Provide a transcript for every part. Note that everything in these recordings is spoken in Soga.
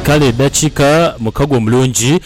Kale edhakiika mukaga omulungi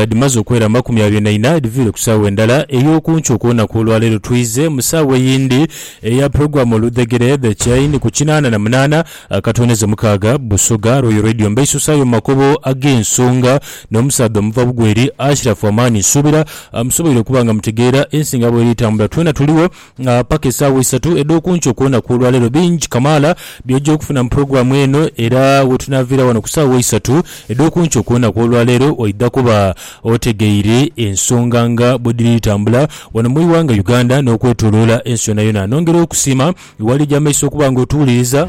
dhimaze okwera amakumi abiri na ina edhiviire ku saawa endala ey'oku nkyo ku lunaku olwa leero twidhze mu saawa eyindi eya pulogulaamu Oludhegere, The Chain, ku kinaana na munaana akatoonheze mukaaga Busoga Royal Radio. Mbeisuusaayo mu makubo ag'ensonga n'omusaadha omuva bugweri, Ashiraf Amaani. Nsuubira musoboire okuba nga mutegeera ensinga bweri tambula. Twena tuligho nga paka esaawa isatu edh'okunkyo ku lunaku olwaleero bingi kamaala by'oja okufuna mu pulogulaamu eno era wetunaaviira wano ku saawa isatu edh'okunkyo ku lunaku olwaleero oidha kuba otegeire ensonga nga bwedhiri dhitambula wano mu ighanga Uganda n'okwetoloola ensi yonayona. Nongera okusiima wali eja maiso okuba nga otuwuliriza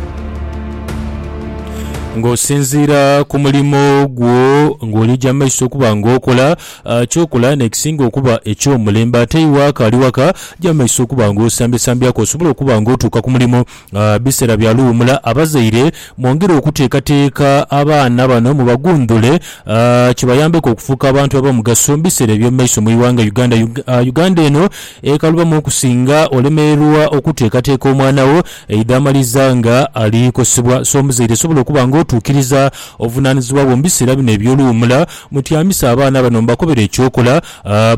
nga osinziira ku mulimo gwo ng'oli eja maiso okuba nga okola. Ky'okola n'ekisinga okuba eky'omulembe. Ate iwe akaali waka, ja mu maiso okuba ng'osambyasambyako osobole okuba ng'otuuka ku mulimu. Biseera bya luwumula. Abazaire, mwongere okuteekateeka abaana bano mubaguundhule kibayambeku okufuuka abantu ab'omugaso mu biseera eby'omu maiso mu ighanga Uganda. Uganda eno ekalubamu okusinga olemererwa okuteekateeka omwana wo aidha amaliza nga ali kosebwa. So, omuzaire sobola okuba ng'otuukiriza obuvunaanizibwa bwo mu biseera bino eby'oluwumula Mutyamisa abaana bano mubakobere eky'okola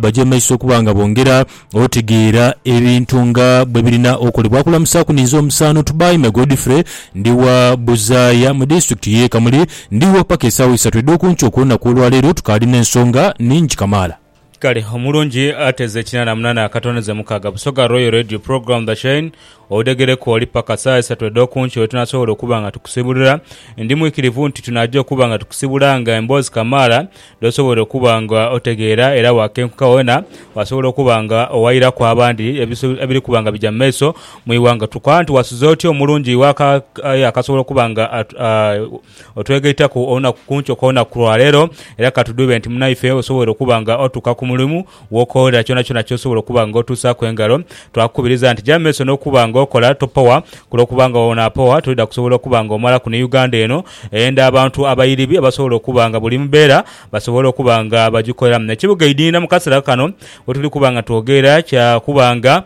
baje mu maiso okuba nga bongera otegeera ebintu nga bwe birina okolebwa. Akulamusaaku ninze omusaano Tubaime Godfrey, ndi wa Buzaaya mu disitulikiti y'e Kamuli. Ndigho paka esaawa isatu edh'oku nkya okw'olunaku olwaleero. Tukaali n'ensonga ningi kamaala. Kale omulungi ateze ekinana munana akatoneze mukaga Busoga Royal Radio Program The Chain odegereku oli paka saha isatu edhokunkyo wetunasobola okuba nga tukusibulira. Ndi mwikirivu nti tunaja okuba nga tukusibula nga emboozi kamaala dhosobola okuba nga otegeera era wakenkuka wena wasobola okuba nga owairaku abandi ebiri kuba nga bija mumaiso mwighanga. Tukoba nti wasuze otya omulungi iwe akasobola okuba nga otwegaitaku olunaku ku nkyo kw'olunaku ku lwa leero. Era ka tudhube nti munaife osobola okuba nga otuuka ku mulimu w'okoolera kyonakyona ky'osobola okuba nga otuusaaku engalo. Twakukubiriza nti ja mu maiso n'okuba nga okola, topowa, ku lw'okuba nga bw'onaapowa tolidha kusobola okuba nga omalaku ni Uganda eno eyenda abantu abairibi abasobola okuba nga buli mbeera basobola okuba nga bagikoleramu. Ekibuga Idinda mu kaseera kano we tuli kuba nga twogerera kya kuba nga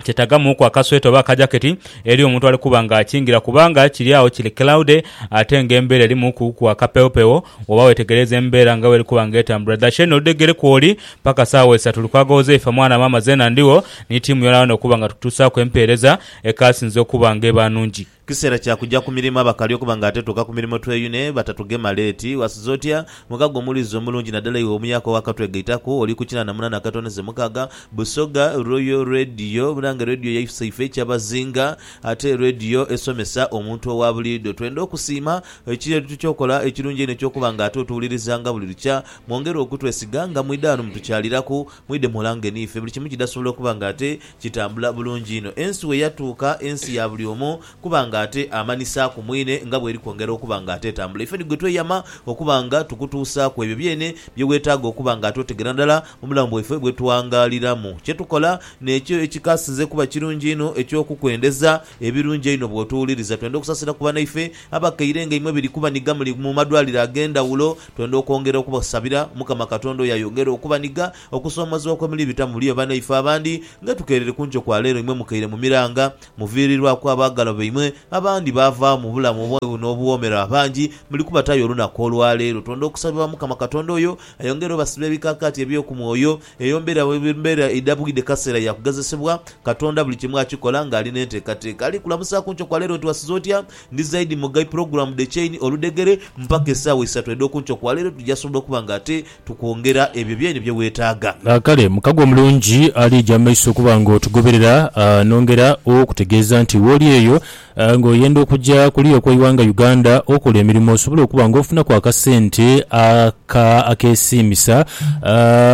kyetagamuuku akasweta oba akajaketi eli omuntu ali kuba nga akingira kubanga kiri agho kiri cloudy ate nga embeera erimuuku ku akapewopewo woba wetegereeza embeera nga bweri kuba nga etambula. Dhashen odhegere kwoli paka saawa isa tuli kwagagho Zeifa mwana maama Zena ndigho ni tiimu yonayona okuba nga tukutusaaku empeereza ekasinze okuba nga eba nungi. Kiseera kya kuja ku mirimo abakali okuba nga ate tuuka ku mirimo tweyune batatugema leeti. Wasiza otya? Mukago omuwuliriza omulungi nadala iwe omuyaka owakatwegaitaku oli ku kinaana munana akatono ze mukaga. Busoga, Royal Radio. Munange Radio yaifuse ife kyabazinga ate Radio esomesa omuntu owa buliido. Twenda okusiima ekyo etukyokola ekirungi einho ekyokuba nga ate otuwulirizanga buli lukya. Mwongere okutwesiga nga mwidha ghano mutukyaliraku Mwidhe mulange niife buli kimu kidasobola okuba nga ate kitambula bulungi inho ensi we yatuuka ensi ya buli omu kuba nga ate amanisa ku mwine nga bweri kwongera okuba nga ate etambula. Ife ni gwe tweyama okuba nga tukutuusaaku ebyo byene bye wetaaga okuba nga ate otegera nadala mu bulamu bwaife bwe twangaaliramu kye tukola n'ekyo ekikasinze kuba kirungi einho eky'okukwendeza ebirungi einho bw'otuwuliriza. Twenda okusasira ku banaife abakaire nga imwe biri kubaniga muli mu madwaliro ag'endhawulo Twendha okwongera okubasabira Omukama Katonda oyo ayongere okubanhiga okusoomozebwa kwe muli bitamu muli oba naife abandi nga tukeerere ku nkyo kwa leero imwe mukaire mu miranga muviiriirwaku abaagalwa baimwe abandi baavaagho mu bulamu obw'obubi n'obuwoomera abangi muli kubatayo olunaku olwa leero. Twendha okusabira Omukama Katonda oyo ayongere obasiba ebikaakaati eby'oku mwoyo eyo mbeera mbeera eidhabwidhe kaseera ya kugezesebwa. Katonda buli kimu akikola ng'ali n'enteekateeka. Ali kulamusa ku nkyo kwa leero nti wasiza otya? Ndi zaidi mugai pulogulaamu dh'ekyeini oludhegere mpaka esaawa isatu edh'okunkyo kwa leero tuja sobola okuba nga ate tukwongera ebyo byeini bye weetaaga. Kale mukago omulungi ali eyo amaiso okuba nga otugoberera. Nongera okutegeeza nti wooli eyo nga oyenda okuja kuliya okw'eighanga Uganda okola emirimo osobole okuba nga ofunaku akasente aka akeesiimisa,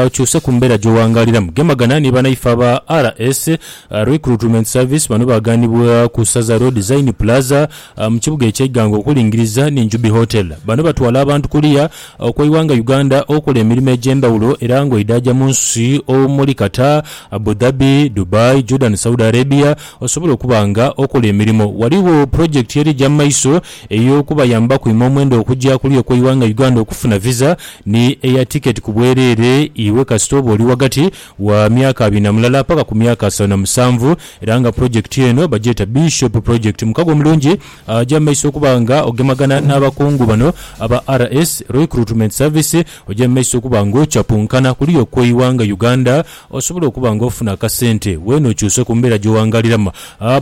okyuse ku mbeera gy'owangaaliramu. Gemagana ni banaife aba RS. Recruitment Service bano baaganibwa ku Saza Road Zaini Plaza mu kibuga ekye Iganga okulingiriza ni Njubi Hotel. Bano batwala abantu kuliya okwa iwanga Uganda okola emirimo egyendhawulo era nga oidhaja munsi omuli Qatar, Abu Dhabi, Dubai, Jordan, Saudi Arabia osobole okuba nga okola emirimo. Waliwo project erija mu maiso eyokubayamba okwima omwendo okuja kuliya okwa iwanga Uganda okufuna visa ni eya ticket ku bwerere iwe kasita oba oli wagati wa myaka abiri na mulala paka ku myaka asatu na musanvu era nga pulojekiti eno bagyeta Bishop Project. Mukago omulungi agya mu maiso okuba nga ogemagana n'abakungu bano aba RS, Roicruitment Service, ogya mu maiso okuba nga ocapunkana kuliya okw'eighanga Uganda osobole okuba nga ofuna akasente weene okyuse ku mbeera gy'owangaliramu.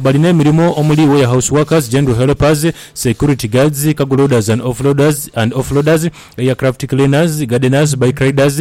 Balina emirimo omuli Warehouse Workers, General Helpers, Security Guards, Cargo Loaders and Offloaders and Offloaders, Aircraft Cleaners, Gardeners, Bike Riders,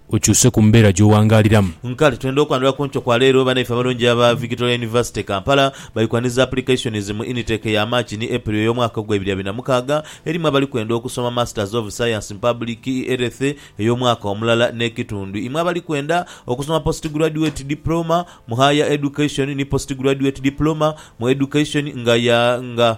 Okyuse ku mbeera gy'owangaaliramu. Nkale twenda okwandhula ku nkyo kwa leero banaife abalungi aba Victoria University Kampala bali kwaniriza applications mu initake ya March ni April ey'omwaka ogwa ebiri abiri na mukaaga erimu abali kwenda okusoma Masters of Science in Public Health ey'omwaka omulala n'ekitundhu imwe abali kwenda okusoma Postgraduate Diploma mu Higher Education ni Postgraduate Diploma mu Education nga ya nga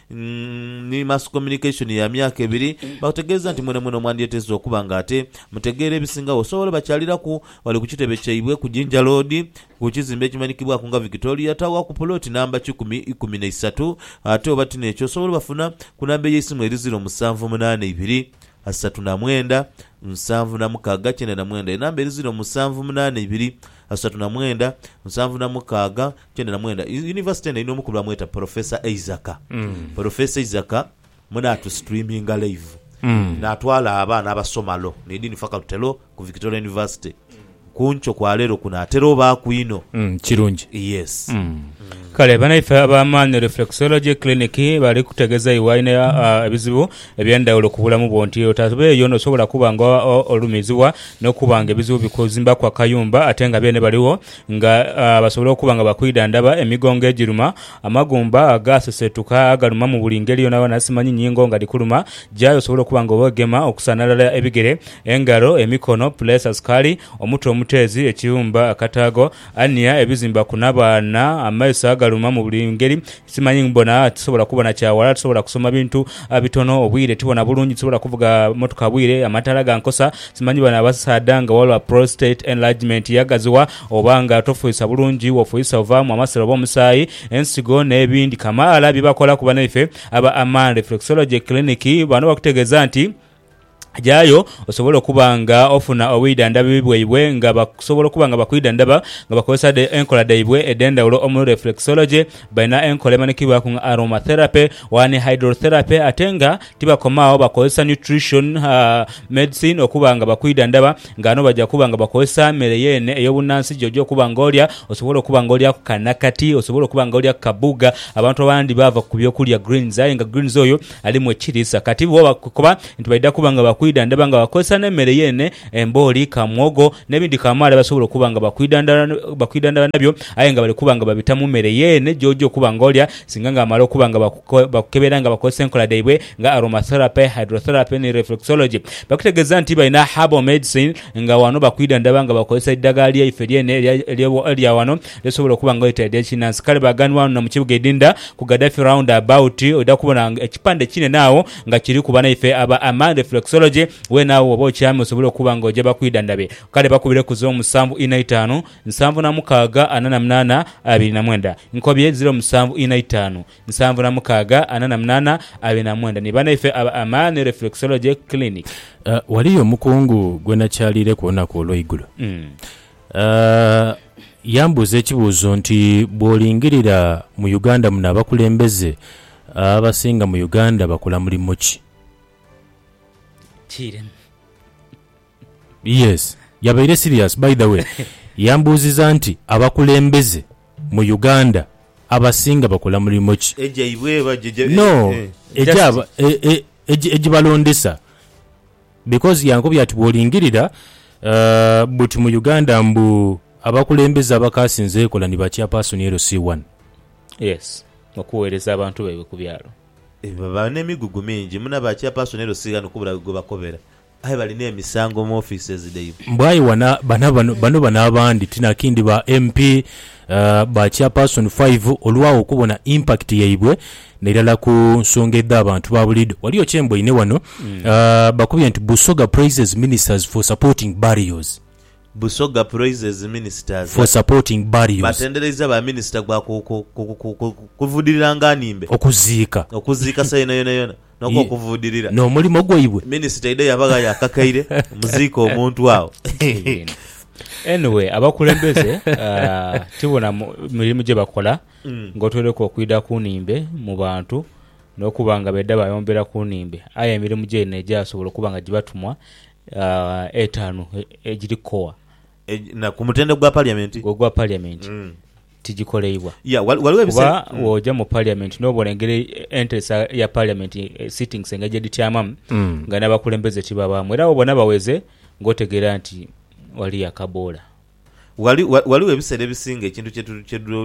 ni Mass Communication ya myaka ebiri, baakutegeeza nti mwenamwena omwandyeteese okuba nga ate mutegeera ebisingawo osobola obakyaliraku. Bali ku kitebe kyaibwe ku Jinja Road ku kizimbe ekimanyikibwaku nga Victoria Tower ku puloti namba kikumi ikumi na isatu ate oba ti n'ekyo osobola obafuna ku namba ey'eisimu eri ziro musanvu munaana ibiri, asatu na mwenda, nsanvu na mukaaga kyenda na mwenda. Enamba eri ziro musanvu munaana ibiri, asatu na mwenda, nsanvu na mukaaga, kyenda na mwenda. Yu- Yunivasite eno erina omukubirwamu yeta Porofesa Eizaka. Porofesa Eizaka mwene atusituriminga laivu natwala abaana abasoma Law ni Dean Faculty Law ku Victoria University. Ku nkyo kwa leero kuno atera obaaku inho. Mm, kirungi. Yes. Kale banaife aba Man Reflexology Clinic bali kutegeza iwe alina ah, ebizibu ebyendawulo ku bulamu bwo nti otabeeyo nosobola kuba nga o- olumizibwa nokuba nga ebizibu bikuzimbaku akayumba ate nga beene baliwo nga basobola okuba nga bakwidhandhaba emigongo egiruma, amagumba agaaseseetuka agaluma mu buli ngeri yoonayoona, simanyi nyingo nga dhikuluma, jayo osobola okuba nga oweegema okusanhalala ebigere, engalo, emikono, puleesa, sukaali, omutwe omuteezi, ekiwumba, akataago, ania, ebizimba ku nabaana, amaiso agaluma mu buli ngeri, Simanyi mubona, tisobola kubona kya wala, tisobola kusoma bintu bitono, obwire tibona bulungi, tisobola kuvuga motoka bwire, amataala gankosa. Simanyi bano abasaadha nga walwa prostate enlargement yagaziwa oba nga tofuisa bulungi, wofuisa ovaamu amasira oba omusaayi, ensigo n'ebindi kamaala bye bakola ku banaife aba Aman Reflexology Clinic. Bano bakutegeeza nti. Jayo osobole okuba nga ofuna obwidhandhabi bwaibwe nga basobola okuba nga bakwidhandhaba nga bakozesa dhe enkola dhaibwe edh'endhaghulo omuli reflexology, balina enkola emanhikibwaku nga aromatherapy waala ni hydrotherapy ate nga tibakoma agho bakozesa nutrition medicine okuba nga bakwidhandhaba nga ghano baja kuba nga bakozesa mere yeene ey'obunnansi gy'oja okuba nga olya osobole okuba nga olyaku ka nakati, osobole okuba nga olyaku ka bbuga. Abantu abandhi baava ku byokulya greens aye nga greens oyo... alimu ekiriisa kati bwo bakoba nti baidha kuba nga bakwidha ndaba nga bakozesa n'emmere yeene, embooli, ka mwogo n'ebindi kamaala basobola okuba nga bakwidha ndala nabyo aye nga bali kuba nga babita mu mmere yeene gy'oja okuba nga olya singa nga bamala okuba nga bakukebera nga bakozesa enkola dhaibwe nga Aromatherapy, Hydrotherapy ni Reflexology. Bakutegeeza nti balina Herbal Medicine nga wano bakwidha ndaba nga bakozesa eidhagala lyaife lyeene erya wano Esobola okuba nga oyeteredha ekinansi kale baganhwa wano na mu kibuga Idinda ku Gaddafi Round About oidha kubona ekipande kinene agho nga kiriku banaife aba Amaan Reflexology weene agho woba okyamye osobole okuba nga oja bakwidhandhabe kale bakubire ku ziro musanvu inha itaanu nsanvu na mukaaga ana na munaana abiri na mwenda Nkobye ziro musanvu inha itaanu nsanvu na mukaaga ana na munaana abiri na mwenda ni banaife aba Amaan Reflexology Clinic. Ghaliyo omukungu gwe nakyaliireku olunaku olw'eigulo. Yambuuza ekibuuzo nti, Bw'olingirira mu Uganda muno abakulembeze abasinga mu Uganda bakola mulimu ki? Kiiremu. Yes. Yabaire serious by the way. Yambuuziza nti, Abakulembeze mu Uganda abasinga bakola mulimu ki? Egyaibwe oba? No, egyabalondesa. Because yankobya ati bwolingirira buti mu Uganda mbu abakulembeze abakaasinze ekola ni ba chairperson LC one. Yes okuwereza abantu baibwe ku byalo. Baba n'emigugu mingi muna ba chairperson LC ghano kubulagho gwebakobera aye bali n'emisango mu offices dhaibwe. Mbu aye wana bana bano bano bano abandi tinakindi ba MP Ba Chairperson five olwagho okubona impact yaibwe nairala ku nsonga edha bantu ba buliidho. Waliyo kye mboine wano bakubye nti Busoga praises ministers for supporting burials. Busoga praises ministers For supporting burials. batendereiza ba minister gwa ku ku ku ku ku kuvudirira nga nimbe Okuziika. okuziika saha yona yona yona. ye n'okuvuudirira. n'omulimo gwaibwe. Minisita eidha yaba ghayo akakaire muziike omuntu agho. Kibinho. Anyway, abakulembeze tibona mirimu gyebakola ng'otoireku okwidha ku nhimbe mu bantu n'okuba nga baidha bayombera ku nhimbe aye emirimu gyaidha n'egyasobola okuba nga gibatumwa etaanu egiri kowa. Na ku mutendhe gwa Parliament. Ogwa Parliament. tigikoleibwa. Kuba bwoja mu parliament nobona engeri enteresa ya parliament sittings engeri gyedhityamamu nga nabakulembeze tibabaamu era bwobona baweze nga otegeera nti waliyo akaboola. Ghaligho ebiseera ebisinga ekintu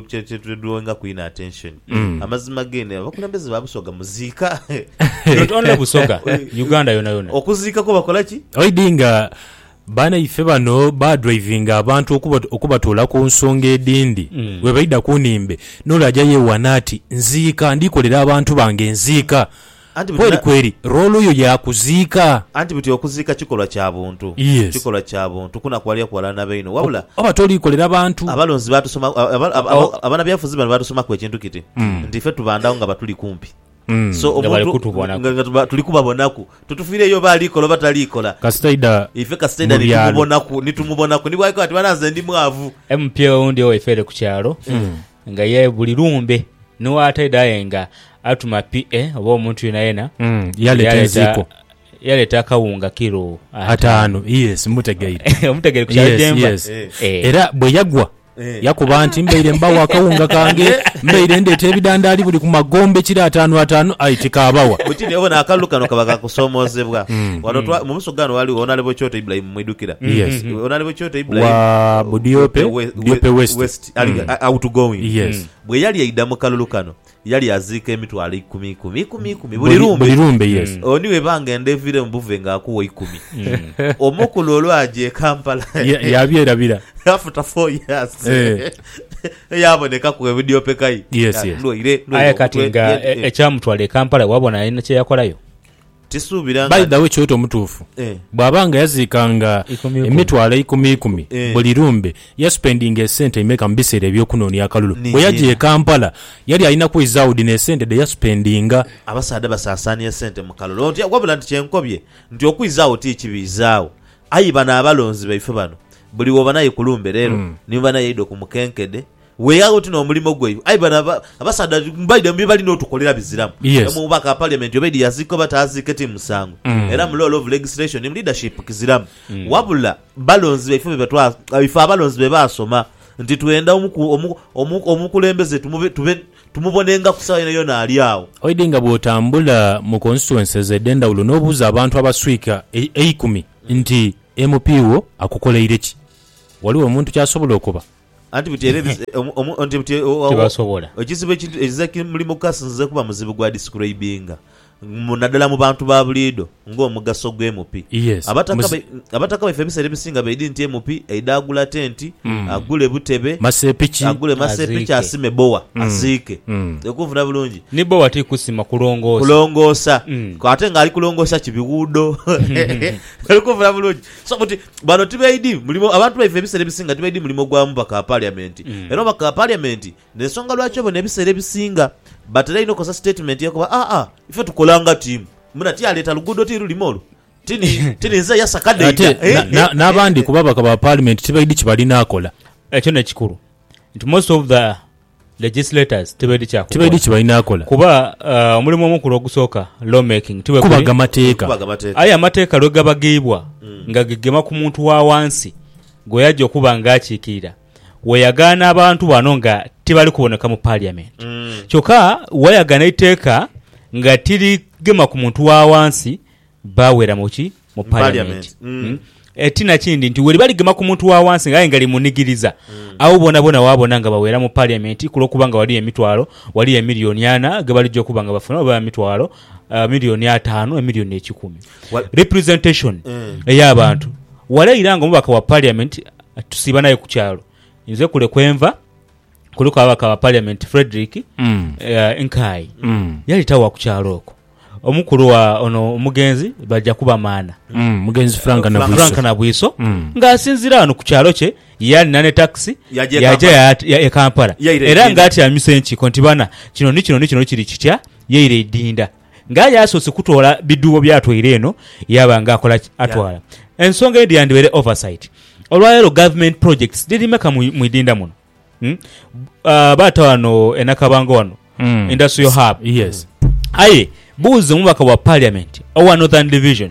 kyetudrawingaku inho attention amazima geenhe abakulembeze ba Busoga muziika. Not only Busoga, Uganda yonayona. Okuziika kwo bakola ki? Oidinga Banaife bano badrivinga abantu okuba okubatoola ku nsonga edhindi. Bwe baidha ku nnhimbe, n'ole aja yeewaana ati, Nziika, ndi kolera abantu bange nziika. Anti buti Kweri na. kweri, roolo yo ya kuziika. Anti buti okuziika kikolwa kya buntu. Yes. Kikolwa kya buntu kunakuwalira kuwalana na bainho. Wabula. O, oba toli kolera bantu. Abalonzi baatusoma, aba, aba, aba, abanabyabufuzi bano baatusomaku ekintu kiti nti ife tubandagho nga batuli kumpi. Mm, So nga bali omuntu kutubonaku. nga- nga tuba- tuli kubabonaku totufiireyo oba ali kola oba tali kola Kasita aidha ife kasita aidha mu byalo. nitumubonaku nitumubonaku nibwaika ati bana nze ndi mwavu emupya owundi owaife ere ku kyalo nga ye buli lumbe niwo ataidha aye nga atuma pa oba omuntu yenayena Mm, yaleeta enziiko yaleeta akawunga kiro ataano yes mutegeire omutegere ku kyalo Yes, gyemba yes. Eh. era bwe yagwa Yakoba nti, Mbaire mbagho akawunga kange, mbaire ndeeta ebidandaali buli ku magombe kiro ataanu ataanu, aye tikaabagha. Bwe kityo, obona akalulu kano kaba ka kusoomoozebwa. Ghano twa, mu buso ghano ghaligho Onalebo Kyoto Ibulayimu, mwidhukira? Yes. Onalebo Kyoto Ibulayimu, Wa Budiope, Budiope West. West, ali, Mm. a- outgoing. Yes. Bwe yali aidha mu kalulu kano, Yali aziika emitwalo ikumi ikumi, ikumi ikumi buli lumbe. Buli lumbe, yes. Oyo ni w'ebanga enda eviire mu buve nga akuwa ikumi. Omukulu olwaja e Kampala. Ya- yabyerabira. After four years. Eh. Eyabonekaku ebidyopekai. Yes, yes. Ndwaire, ndwaire Aye kati omutwe, nga e- e- e- e- ekyamutwala e Kampala wabona alina kye yakolayo? By the way kyoyeta omutuufu bwaba nga yaziika nga emitwalo eikumi ikumi buli lumbe yasupendinga esente imeka mubiseera ebyokunoonia akalulu? Bweyajia e Kampala yali alina kweizagho dhino esente dheyasupendinga? Abasaadha basasaania sente mukalulu otya wabula nti kyenkobye nti okwiizagho ti kibi izaagho aye bano abalonzi baife bano buli wobanaye kulumbe leero nimubanaye idho kumukenkede Weghagho oti n'omulimo gwo eyo. Aye bano abasaadha mbaidha bye bali n'otukolera biziramu. Omu mubaka wa Parliament obaidha yaziika oba taaziike ti musango era mu law of legislation mu leadership kiziramu. Wabula balonzi baife be twa, ife abalonzi be baasoma nti twenda omukulembeze tube, tumubonengaku sawa yonayona ali agho. Oidhi nga bw'otambula mu constituencies edh'endhawulo n'obuuza abantu abaswika eikumi nti MP wo akukoleire ki? Ghaligho omuntu ky'asobola okoba? Anti buti era ebiz, omu, omu, nti buti o- o- Tibasobola. ekizibu ekintu ekiza ki muli mu kasi nzize kuba muzibu gwa describinga mu nadala mu bantu ba buliido nga omugaso gwe MP. Yes. Abataka Muzi- bai- abataka baife ebiseera ebisinga baidhi nti MP aidha agula tenti, Mm. agule butebe, Masepiki. agule masepiki Aziike. asime bowa Mm. aziike. Mm. Okunfuna bulungi. Ni bowa ti kusima kulongoosa. Kulongoosa. Mm. Ate nga ali kulongoosa ki biwuudo. Oli kunfuna bulungi. So buti bano tibaidhi mulimo, abantu baife ebiseera ebisinga tibaidhi mulimo gwa mubaka wa Paliamenti. Era omubaka wa Paliamenti n'ensonga lwaki obona ebiseera ebisinga batera inho okukozesa sitatimenti ye kuba, Aa, ife tukola nga tiimu. Muna ti yaleeta luguudo ti lulime olwo. Ti ni, ti ninze yasa kade Ate ida. na- na- n'abandi ku babaka ba Paalimenti tibaidhi kibali n'akola. Ekyo n'ekikulu nti most of the Legislators tibaidhi kya kukola kuba omulimu omukulu ogusooka law making ti bwe guli, kubaga mateeka. Aye amateeka lwe gabagibwa nga gegema ku muntu wa wansi gwe yaja okuba nga akiikirira, weyagaana abantu bano nga tibali kuboneka mu Parliament. Kyokka wayagaana eiteeka nga tirigema ku muntu wa wansi, Baawera mu ki? Mu Paliamenti. E ti na kindi nti weri baligema ku muntu wa wansi nga aye ngali munigiriza, agho boonaboona waabona nga bawera mu Paliamenti ku lw'okuba nga ghaliyo emitwalo, ghaliyo emilioni ana ge balija okuba nga bafuna, oba emitwalo, emilioni ataanu, emilioni ekikumi. Representationi ey'abantu. Wale ira nga omubaka wa Paliamenti tusiiba naye ku kyalo. Nze kule kwe nva. kuliku ababaka ba Paliamenti Fredrick Nkayi yali tawa ku kyalo okwo, omukulu wa ono omugenzi Bajakubamaana, omugenzi Frank Nabwiso ng'asinziira ghano ku kyalo kye yali na ne takisi yaja e Kampala era ng'atyamisa enkiiko nti bana kino ni kino ni kino kiri kitya yaire eidinda. Nga aye asoose kutwala bidhuubo by'atwaire eno yaaba nga akola ki? Atwala. Ensonga eyo dhiyandhibaire oversight. Olwaleero government projects dhiri meka mu mu idinda muno? Umm baata wano e Nakabango wano industrial hub. Yes. Aye buuza omubaka wa parliament owa Northern Division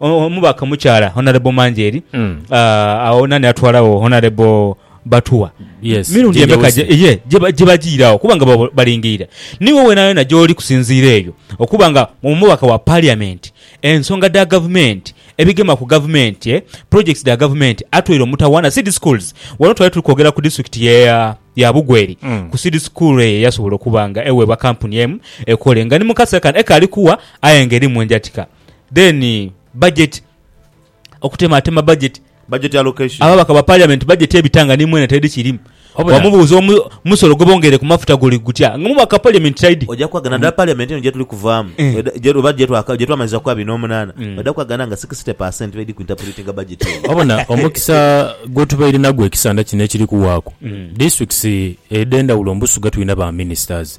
Omubaka omukyala Honourable Manjeeri agho nani atwala gho Honourable Batuwa mirundi Ginger emeka Wilson. gye ye gye ba- gye bajiira agho okuba nga babo- balingiira niwo yonayona gy'oli kusinziira eyo okuba nga omubaka wa Parliament ensonga dha gavumenti ebigema ku gavumenti eh, projects dha gavumenti atweire omutawaana Seed Schools wano twali tuli kwogera ku disitulikiti ye ya ya Bugweri ku Seed School eyo eyasobola okuba nga eweebwa kampuni emu ekole nga ni mu kaseera kano ekaali kuwa aye nga erimu enjatika then budget okutematema budget Budget allocation. ababaka ba parliament budget ebita nga ni mwene teri kirimu Wabula- wamubuuza omu- omusolo gwebongeire ku mafuta guli gutya nga omubaka wa parliament taidi Oja kwagana nadala parliament eno gyetuli kuvaamu Eh. weda- gye- oba gyetwaka- gyetwamaliza ku abiri n'omunaana Mm. oja kwagana nga 60 per cent baidi ku interpretinga budget eno. wabona omukisa gwetubaire nagwo ekisanda kino ekiri kuwaaku Mm. districts edhendawulo mbusuga tulina ba ministers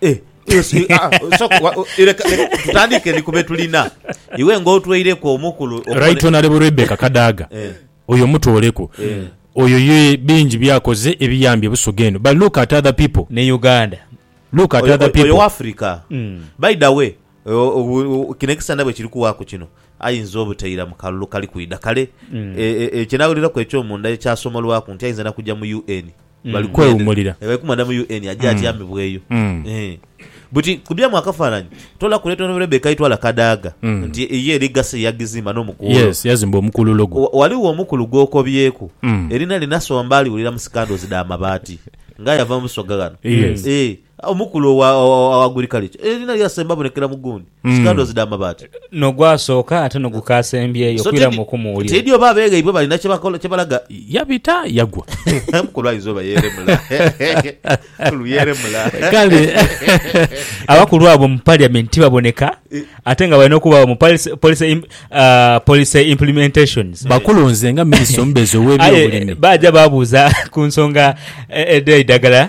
Eh, iwe si- ah, ah, so- wa- o- leka- leka tutandiike ni ku be tulina iwe ng'otweireku omu ku lu- okubone- Right Honourable Rebecca Kadaga Eh. oyo mutooleku Eh. oyo ye bingi byakoze ebiyambye Busoga eno but look at other people ne uganda look at Oyo- other oyo- oyo people wa afurika Mm. by the way o- o- o- kino ekisana bwe kiri kuwaaku kino ayinza obuteira mu kalulu kali kwidha kale Mm. e- e- ekinaawuliraku ekyomunda ekyasomolwaku nti ayinza nakujja mu un bali kwewumulira. Eeh bali kumwenda mu UN aje atyamibweyo. Eeh buti ku byamu akafananyi tola ku Leighton Rebecca aitwala Kadaga nti ye legacy yagizimba no mukuulo. Yes yazimba omukululo gwe. Waligho omukulu gwokobyeku erinha lye nasomba aliwulira mu scandals dha mabaati nga yava mu Busoga ghano eeh Omukulu owa guli kalicho eri nali asemba abonekera mu gundi, skandozi dha mabaati. N'ogwasooka ate n'ogukaasembyeyo kwira mu kumuwulira. Tiidhi oba abeeghaibwe balina kye balaga. Yabita yagwa. Omukulu ayinza oba yeeremula. Omukulu yeeremula. Kale abakulu abo mu Parliament tibaboneka ate nga balina okubaagho mu policy implementations. Bakulu nze nga Minisita omubeezi ow'ebyobulimi. Aye baaja baabuuza ku nsonga edh'eidhagala.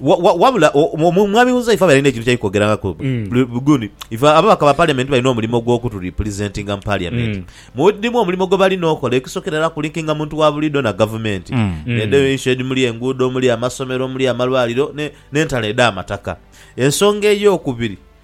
Wabula Mwami Huzaifa abe alina ekintu kyali kwogerangaku gundi, ife ababaka ba Parliament balina omulimo gw'okutu representinga mu Parliament. Mulimu omulimo gwebalina okola, ekisookera era ku linkinga muntu wa buliidho na Gavumenti n'edho enshed omuli enguudho, omuli amasomero, omuli amalwaliro n'entalo edh'amataka. Ensonga ey'okubiri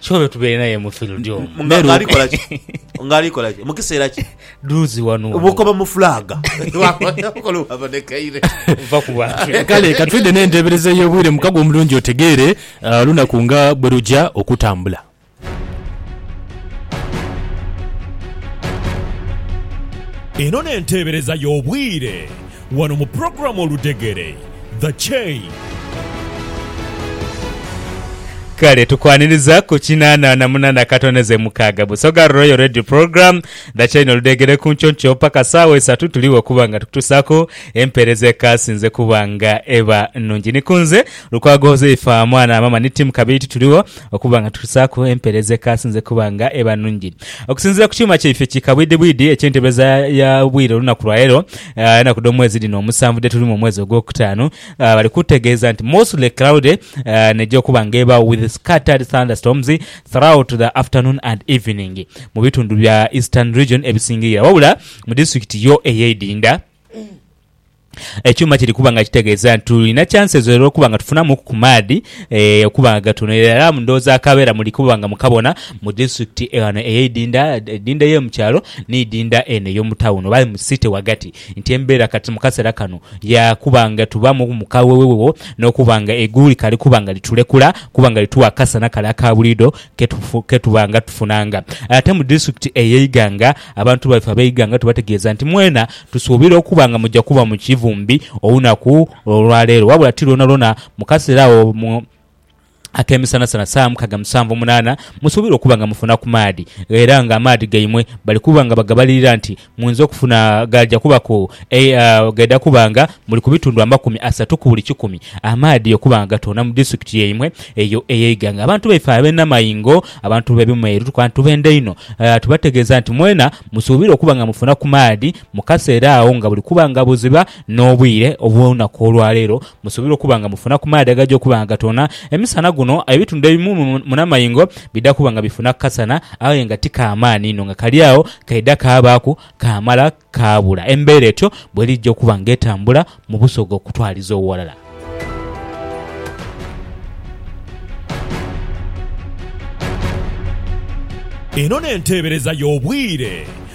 kyobe eh. tubeere naye mu field omu nga alikola ki mukiseera ki duzi wano obukoba mu fulaga kale katwidde n'enteebereza ey'obwire mukago omulungi otegeere uh, lunaku nga bwe lujja okutambula eno n'enteebereza y'obwire wano mu pulogulaamu Oludhegere, The Chain. Kale tukwaniriza ku kinaana na munaana katono ze mukaaga. Busoga Royal Radio Program, The Chain Oludhegere ku nkyonkyoo paka saawa isatu tuligho okuba nga tukutusaaku empeereza ekaasinze kuba nga eba nungi. Ni ku nze Lukwago Huzaifa mwana wa maama ni Tim Kabiiti tuligho okuba nga tukutusaaku empeereza ekaasinze kuba nga eba nungi. Okusinziira ku kyuma kyaife ki kabwidhibwidhi eky'entebeza y'obwire olunaku lwaleero, Enaku dh'omwezi dhino omusanvu dhe tulimu omwezi ogwokutaanu, bali kutegeeza nti mostly cloudy n'eja okuba nga ebaagho with scattered thunderstorms throughout the afternoon and evening mu bitundu bya Eastern Region ebisingirira wabula mu disitulikiti yo ey'eidinda ekyuma kiri kuba nga kitegeeza nti tulina chances era okuba nga tufunamuuku ku maadhi okuba nga gatono era mu ndhooza akabeera muli kuba nga mukabona. Mu disiturikiti ghano ey'eidinda, eidinda ey'omu kyalo n'eidinda eno ey'omu tawuni oba mu site ghagati, nti embeera kati mu kaseera kano ya kuba nga tubaamu mu kawewewewo n'okuba nga eigulu likali kuba nga litulekula kuba nga lituwa akasana kale aka buliidho ke tuba nga tufunanga. Aye ate mu disiturikiti ey'eighanga, abantu baife ab'eighanga tubategeeza nti mwena tusuubira okuba nga muja kuba mu kivumbi olunaku olwaleero wabula ti lwonalwona mu kaseera agho. ak'emisanasana saa mukaga mu sanvu munaana musuubirwa okuba nga mufuna ku maadhi, era nga amaadhi gaimwe bali kuba nga bagabalirira nti mwinza okufuna agaja kubaku gaidha kuba nga muli ku bitundu amakumi asatu ku buli kikumi amaadhi okuba nga gatoona mu disitulikiti yaimwe eyo eye Iganga. Abantu baife abe Namaingo, abantu be Bimweri tukuba tubenda inho tubategeeza nti mwena musuubirwa okuba nga mufuna ku maadhi mu kaseera agho nga buli kuba nga buziba n'obwire obw'olunaku olwaleero Musuubirwa okuba nga mufuna ku maadhi agaja okuba nga gatoona emisana guno. Aye ebitundu ebimu mu namaingo bidha kuba nga bifuna ku kasana aye nga ti ka maani inho nga kali agho kaidha kaabaaku kaamala kaabula. Embeera etyo bw'erija okuba nga etambula mu busoga okutwaliza owalala. Eno n'enteebereza y'obwire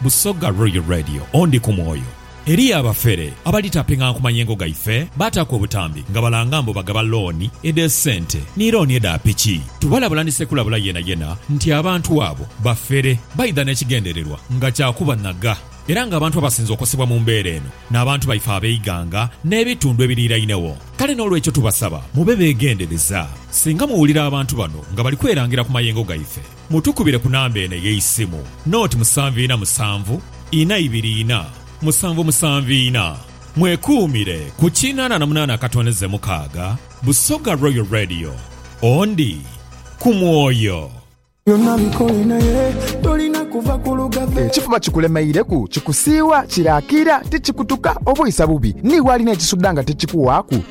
Busoga Royal Radio ondi ku mwoyo. Eriyo abafere abalitapinganku mayengo gaife baataku obutambi nga balanga mbu bagaba looni edh'esente ni looni edha piki. Tubalabula ni sekulabula yenayena nti abantu abo bafere baidha n'ekigendererwa nga kya kubanhaga era ng'abantu abasinze okosebwa mu mbeera eno n'abantu baife ab'eighanga n'ebitundu ebiriirainegho. Kale n'olwekyo tubasaba mube beegendereza singa muwulira abantu bano nga bali kwerangira ku mayengo gaife. Mutukubire ku namba eno ey'eisimu, noti musanvu ina musanvu, ina ibiri ina, musanvu musanvu ina. Mwekuumire ku kinana na munana akatondeze mukaaga, Busoga Royal Radio. Ondi ku mwoyo. Ekifuba kikulemeireku, kikusiiwa, kiraakira, tikikutuka, oba oisa bubi? Ni walina ekisuda nga tikikuwaaku?